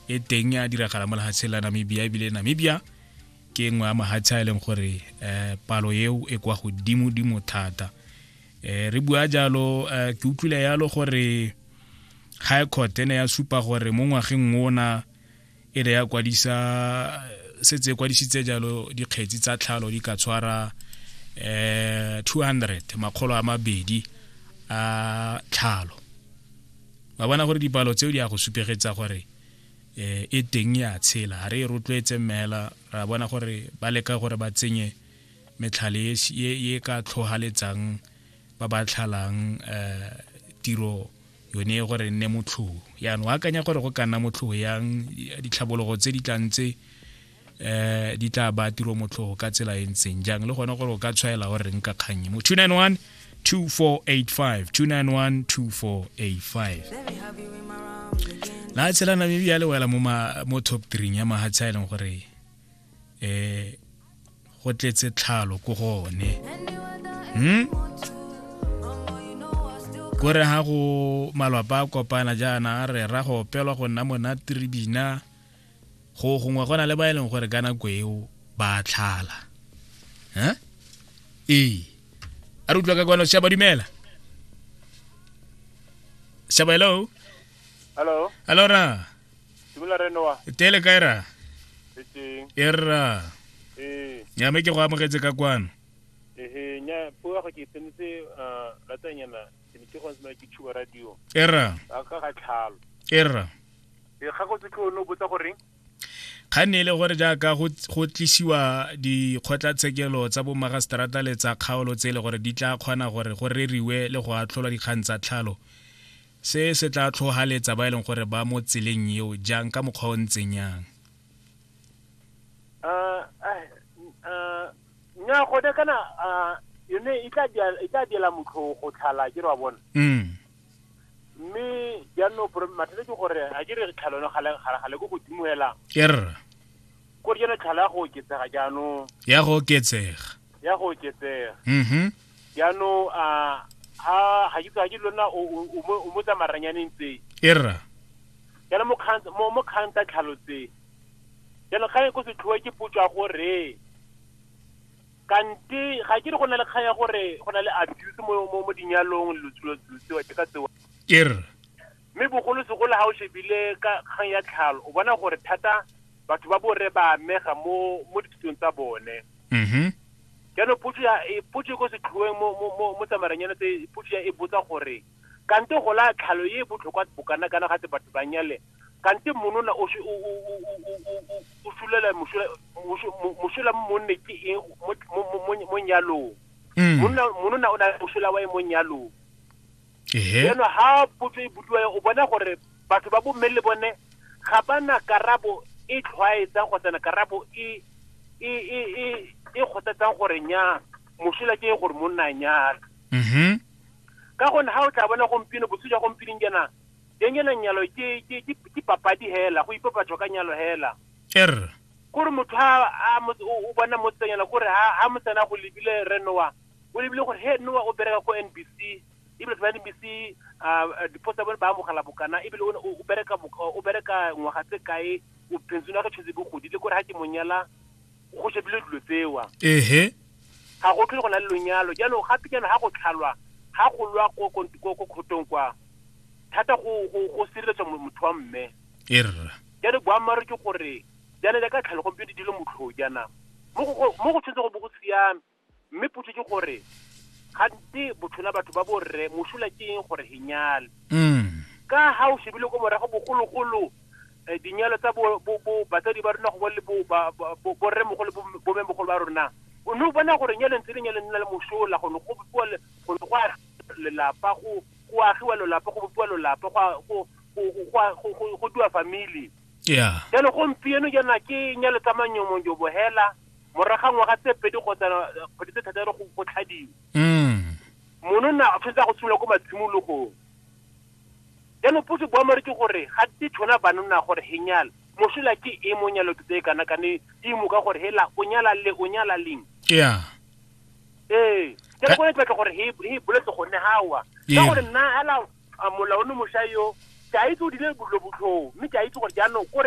e teng a diragala mo lehatsheng la namibia ebile namibia ke nngwe ya mahatshe a e leng gore um palo eo e kwa godimo-dimo thata um re bua jalo um ke utlwile yalo gore high court e ne ya supa gore mo ngwageng ona e ne ya kwadisa setse e kwadisitse jalo dikgetsi tsa tlhalo di ka tshwara um 200 makgolo a mabedi a tlhalo ba bona gore dipalo tseo di ya go supegetsa gore um e teng ya tshela ga re e rotloetse mmela ra bona gore ba leka gore ba tsenye metlhale e ka tlhogaletsang ba ba tlhalang um tiro yone gore nne motlhogo yaanong akanya gore go ka nna motlhogo yang ditlhabologo tse di tlang tse eh di tla ba tiro motlhogo ka tsela e ntseng jang le gone gore o ka tshwaela gore reng ka kgannye mo 291 2485 291 2485 la tshela namibia le wela mo top 3 ya mahatsha a e leng gore um go tletse tlhalo ko gone hmm? kore ga go malwapa a kopana jaana a re ra go opelwa go nna monate re bina go gongwe go na le ba e leng gore ka nako eo ba tlhala eh? ee a re utlwa ka kwano shaba dumela shaba hello hello hello ra dumela re noa tele kae ra e ra ee. ya me ke go amogetse ka kwano ehe nya puo ya go ke tsenetse uh, latsanyana era era ga ne e le gore jaaka go tlisiwa dikgotlatshekelo tsa bomagaseterata le tsa kgaolo tse e le gore di tla kgona gore go reriwe le go atlholwa dikgang tsa tlhalo se se tla tlhogaletsa ba e leng gore ba mo tseleng eo jang ka mokgwa o ntseng yang nnyaa gone kana ah, yone e tla dia- e tla diela motlho go tlhala ke re wa bona mm mme jaanong pro- mathata ke gore a ke re tlhalo yone gale gale- gale ko godimo hela erra ko re yone tlhalo ya go oketsega jaanong ya go oketsega ya go oketsega mhm jaanong a ha ga ke ga ke lona o o- o mo- o mo tsamaranyane ntse erra jaanong mo kgang- mo- mo kgang tsa tlhalo tse jalo kgang e ko setlhoe ke potso ya gore kante ga ke re go na le kgang ya gore go na le abuse mo mo mo dinyalong lotsulo tseo ke ka tsewa ke re mme bogolo segolo ga o shebile ka kgang ya tlhalo o bona gore thata batho ba borre ba amega mo mo dithutong tsa bone mhm jaanong potso ya e potso e ko setlhoeng mo mo mo mo tsamaranyana tse potso ya e botsa gore kante gola tlhalo e e botlhokwa bokana kana ga tse batho ba nyale kante monona o sulela mosola mo monne ke eng mo nyalong mm. monona o na le mosola wa e mo nyalong jaanong ha potso e budiwa o bona gore batho ba bomme le bone ga ba na karabo e tlhwaetsang kgotsana karabo e e e e e kgothatsang gore nya mosola ke gore monna nyala mm-hmm. ka gone ha o tla bona gompieno botse jwa gompieno jana Janyana nyalo ke ke ke ke papadi hela, go ipapatso ka nyalo hela. Er. Gore motho ha a mo o bona mo tsanyana gore ha ha motsana go lebile re noa. O lebile gore he noa o bereka ko NBC. E be ba NBC a diposa ba ba mogala bokana e be o bereka o bereka ngwaga tse kae o pension ya go tshotse bogodi le gore ha ke monyala go shebile dilo tsewa ehe ga go tlhole go na le lonyalo jalo gape jaanong ga go tlhalwa ga go lwa ko ko- ko- ko kgotong kwa thata go go- go sireletswa mo- motho wa mme e rra jalo boammaaruri ke gore jaana jaaka tlhalo gompieno di dilo motlhoo jaana mo go go- mo go tshwanetse go bo go siame mme potso ke gore gantsi botlhola batho ba borre mosola ke eng gore he nyale mm. ka ga o shebile ko morago bogologolo um dinyalo tsa batsadi ba rona go le borremogolo bomemogolo ba rona o ne o bona gore nyalo ntse le nyalo nna le mosola go ne go bopiwa lelapa go agiwa lelapa go bopiwa lelapa go diwa family jalo gompieno jaana ke nyalo tsa manyomonjobo hela morago ga ngwaga tse pedi kgotsa kgwedi tse thataro go go tlhadiwa mm. monona o tshwanetse a go simolola ko matshimologong jaanong puso boamare ke gore ga te tshwana banona gore he nyala mosola ke e mo nyalo ke tse kana kane di mo ka gore hela o nyala le o nyala leng yeah ee ke go etla gore he he boletse go ne hawa ka gore nna ala molaone mosha yo ke a itse o dile botlo botlho mme ke a itse gore jaanong kore